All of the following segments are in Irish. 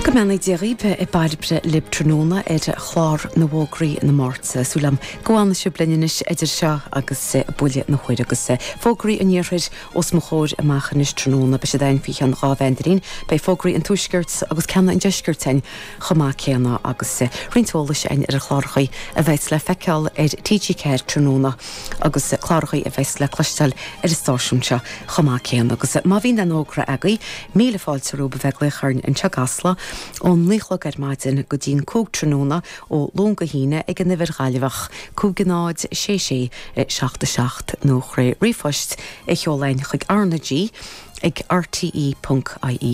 Go mbeannaí Dia dhaoibh, Bairbre lib tráthnóna ar chlár na bhfógraí na Máirte. Súil agam go bhfanfaidh sibh linn anois idir seo agus buille na huaire agus fógraí an iarthair os mo chomhair amach anois tráthnóna. Beidh siad ann faoi cheann dhá mheandairín. Beidh fógraí an tuaiscirt agus ceanna an deiscirt ann chomh maith céanna agus roinnt eolais ann ar na clárachaí a bheas le feiceáil ar TG4 tráthnóna. agus clárachaí a bheas le cloisteáil ar an stáisiún seo chomh maith céanna. Agus má bhíonn aon fhógra agaibh, míle fáilte romhaibh a bheith ag glaoch orainn anseo i gCasla, ón naoi chlog ar maidin go dtí'n cúig tráthnóna, ó Luan go hAoine, ag an uimhir Ghaillimh, 506677 nó thar ríomhphost a sheoladh chugainn chuig R-na-G ag rte.ie.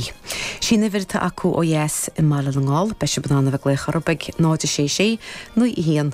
Sí'n uimhir atá acu ó dheas i mBaile na nGall. Beidh sib in ann a bheith glaoch orthub ag 0 6 6 9 1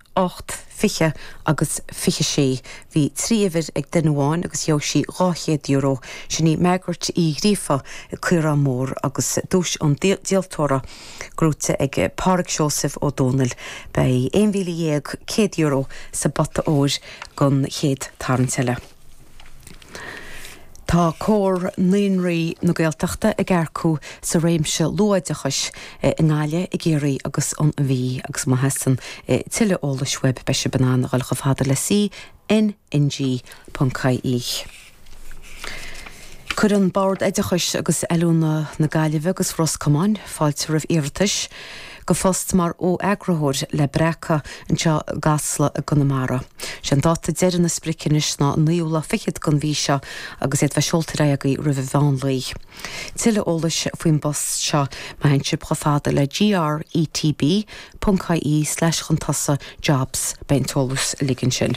8, 20 agus 26. Bhí trí uimhir ag duine amháin agus gheobhadh sí dhá chéad euro. Sin í Margaret Uí Ghríofa An Caorán Mór agus duais an díoltóra gnóite ag Pádraig Seosaimh Ó Dónaill. Beidh €11,100 sa bpota óir don chéad tarraingt eile. Tá Comhar Naíonraí na Gaeltachta ag earcú sa réimse luathoideachais i nGaillimh, i gCiarraí agus an Mhí agus má theastaíonn tuilleadh eolais uaibh beidh sibh in ann a dhul chomh fada le CNNG.ie. Cuireann Bord Oideachais agus Oiliúna na Gaillimhe agus Ros Comáin fáilte roimh iarratais. go phost mar fho-eagraitheoir le Breacadh anseo i gCasla i gConamara. Sé an dáta deiridh nó an sprioc anois ná an naoú lá fichead den mhí seo agus iad bheith seolta ar aghaidh agaibh roimh a mheánlae. Tuilleadh eolais faoin bpost seo má théann sibh chomh fada le GRETB.ie/chun tosaigh jobs, beidh an t-eolas uilig ansin.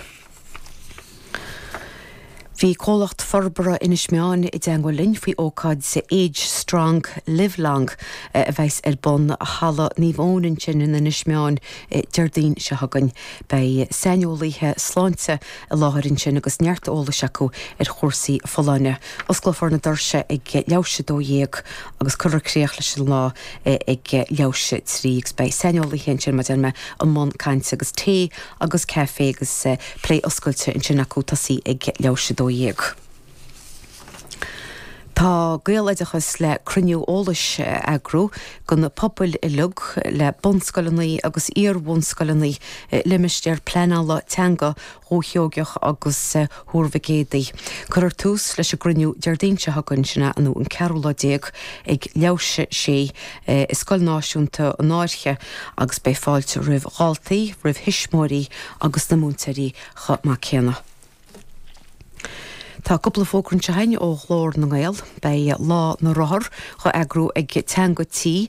Bhí comhlacht forbartha Inis Meáin i dteagmháil linn faoi ócáid Age Strong, Live Long a bheas ar bun i Halla Naomh Eoin ansin in Inis Meáin Déardaoin seo chugainn. Beidh saineolaithe sláinte i láthair ansin agus neart eolais acu ar chúrsaí folláine. Osclófar na doirse ag leathuair théis a dó dhéag agus cuirfear críoch leis an lá ag leathuair théis a trí agus beidh saineolaithe i mbun cainte agus tae agus caife agus plé oscailte ansin acu tosaí ag leathuair théis 12. Tá Gaeloideachas le cruinniú eolais a eagrú do na pobail uilig le bunscoileanna agus iar-bhunscoileanna i limistéar pleanála teanga Dhúiche Sheoigeach agus Thuar Mhic Éadaigh. Cuirfear tús leis an gcruinniú Déardaoin seo chugainn, sin é an 14 lá, ag leathuair tar éis a sé i Scoil Náisiúnta na Fairche agus beidh fáilte roimh dhaltaí, roimh thuismitheoirí agus na múinteoirí chomh maith céanna. Tá cúpla fógra tagtha chugainn ó Ghlór na nGael. Beidh Lá na Rothar á eagrú ag Teanga Tí.